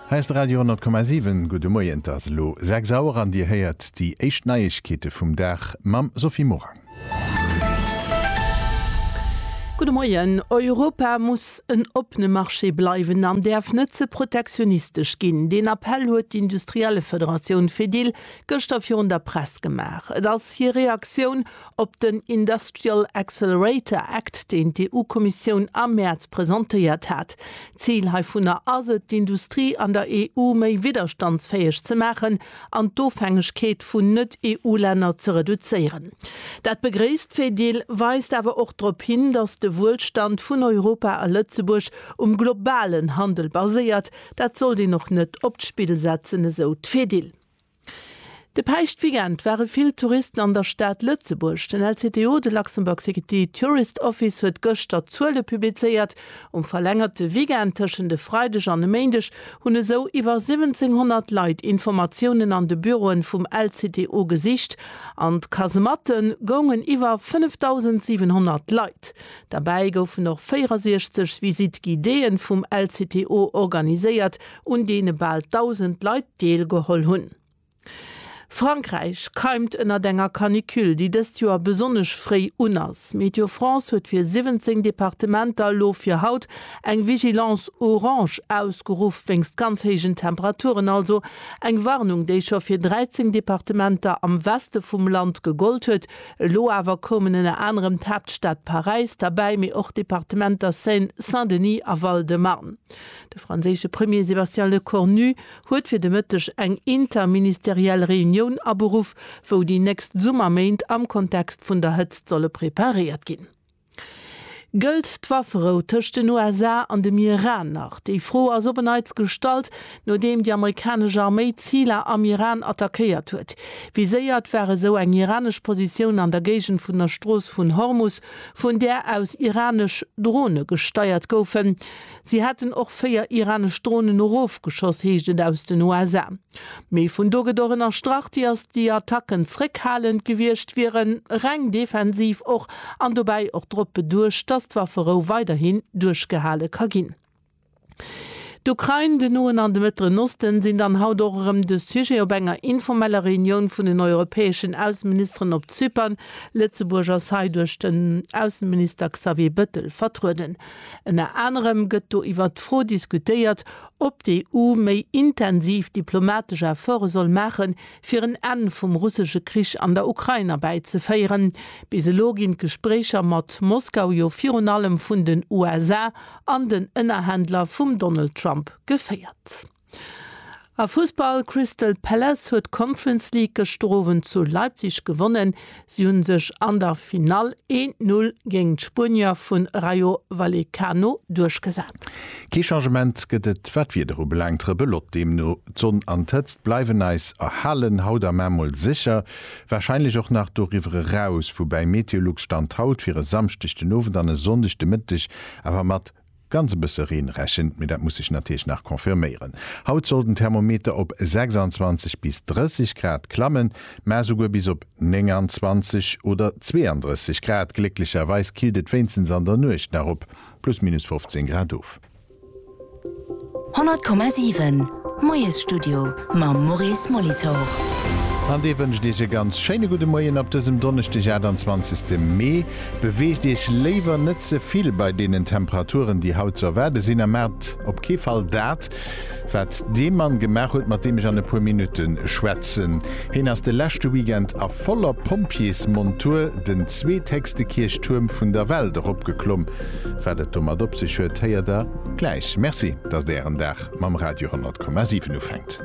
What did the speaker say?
Hei ass de Radio 10,7. Gudde Moien, et ass elo 6 Auer an Dir héiert déi éischt Neiegkeete vum Dag mam Sophie Morang. Gudde Moien, Europa muss en oppene Marché bleiwen an däerf net ze protektionistesch ginn. Deen Appell huet d'Industriellefederatioun Fedil gëschter virun der Press gemaach. Et ass hir Reaktioun op den Industrial Accelerator Act, deen d'EU-Kommissioun am Mäerz presentéiert hat. D'Zil heivunner ass et, d'Industrie an der EU méi widderstandsfäeg ze maachen an d'Ofhängegkeet vun Net-EU-Länner ze reduzéieren. Dat begréisst d'Fedil, weist awer och drop hin, datt de Wuelstand vun Europa a Lëtzebuerg um globalen Handel baséiert. Dat sollt een och net op d'Spill setzen, esou d'Fedil. De Päischtweekend ware vill Touristen an der Stad Lëtzebuerg. Den LCTO, de Luxembourg City Tourist Office, huet gëschter d'Zuele publizéiert. Um verlängerte Weekend tëschent e Freideg an e Méindeg hunn esou iwwer 1700 Leit Informatiounen an de Büroen vum LCTO gesicht. An d'Kasematte goungen iwwer 5.700 Leit. Derbäi goufen och 64 Visite-guidéeë vum LCTO organiséiert, un deene bal 1.000 Leit deelgeholl hunn. Frankräich keimt ënnert enger Canicule, déi dëst Joer besonnesch fréi un ass. Météo France huet fir 17 Departementer elo fir haut eng Vigilance orange ausgeruff, wéinst ganz héijen Temperaturen also. Eng Warnung, déi scho fir 13 Departementer am Weste vum Land gegollt huet. Elo awer koumen ënner anerem d'Haaptstad Paräis derbäi, mee och d'Departementer Seine-Saint-Denis a Val-de-Marne. De franséische Premier Sébastien Lecornu huet fir de Mëtteg eng interministeriell Reunioun aberuff, wou déi nächst Summerméint am Kontext vun der Hëtzt solle preparéiert ginn. Gëllt d'Wafferou tëscht den USA an dem Iran nach? Déi Fro ass op e Neits gestallt, nodeem déi amerikanesch Arméi Ziler am Iran attackéiert huet. Viséiert war esou eng iranesch Positioun an der Géigend vun der Strooss vun Hormus, vun där aus iranesch Drone gesteiert goufen. Si hätten och véier iranesch Dronen erofgeschoss, heescht et aus den USA. Mee vun do gëtt och ënnerstrach, diass déi Attacken zréckhalend gewiescht wieren, reng defensiv och, an dobäi och drop beduecht, datt d'Wafferou weiderhin duerchgehale ka ginn. D'Ukrain, den Noen an de Mëttleren Osten sinn dann haut och erëm de Sujet op enger informeller Reunioun vun den europäeschen Ausseministeren op Zypern. Lëtzebuerg ass hei duerch den Ausseminister Xavier Bëttel vertrueden. Ënner anerem gëtt do iwwert d'Fro diskutéiert, ob d'EU méi intensiv diplomatesch Efforte soll maache fir en Enn vum russesche Krich an der Ukrain erbäizeféieren. Bis elo ginn d'Gespréicher mat Moskau jo virun allem vun den USA an den Ënnerhändler vum Donald Trump geféiert. A Fussball, Crystal Palace huet d'Conference League gëschter Owend zu Leipzig gewonnen. Si hu sech an der Finall een Null géint d'Spuenier vu Rayo Vallecano duerchgesat. Kee Changement gëtt et wat d'Wieder ubelaangt, Rebelot deemno. D'Sonn an d'Hëtzt bleiwen eis erhalen, haut am Aamm mol sécher, warscheinlech och nach doriwwer eraus, woubäi Meteolux Stand haut fir e Samschdeg den Owend an e Sonndeg de Mëtteg awer mat Ganz e bësse Reen rechent, mee dat muss sech natierlech nach confirméieren. Haut soll den Thermometer op 26 bis 30 Grad klammen, mä esouguer bis op 29 oder 32 Grad. Glécklecherweis killt et wéinstens an der Nuecht nach op plus minus 15 Grad of. 100,7 Moiesstudio mam Maurice Molitor. An dee wënscht Iech e ganz schéine gudde Moien op dësem Donneschdeg 28 Mee. Beweegt Iech léiwer net ze vill bei deenen Temperaturen, déi haut ze erwaarde sinn a maacht op kee Fall dat, wat dee Mann gemaach huet, mat deem ech an e puer Minutte schwätzen. Heen ass de leschte Weekend a voller Pompjeesmontur den zweethéchste Kierchtuerm vun der Welt eropgeklomm. Wat et domat op sech huet, héiert Der. Gläich. Merci, datt Ären Dag mam Radio 10,7 ufänkt.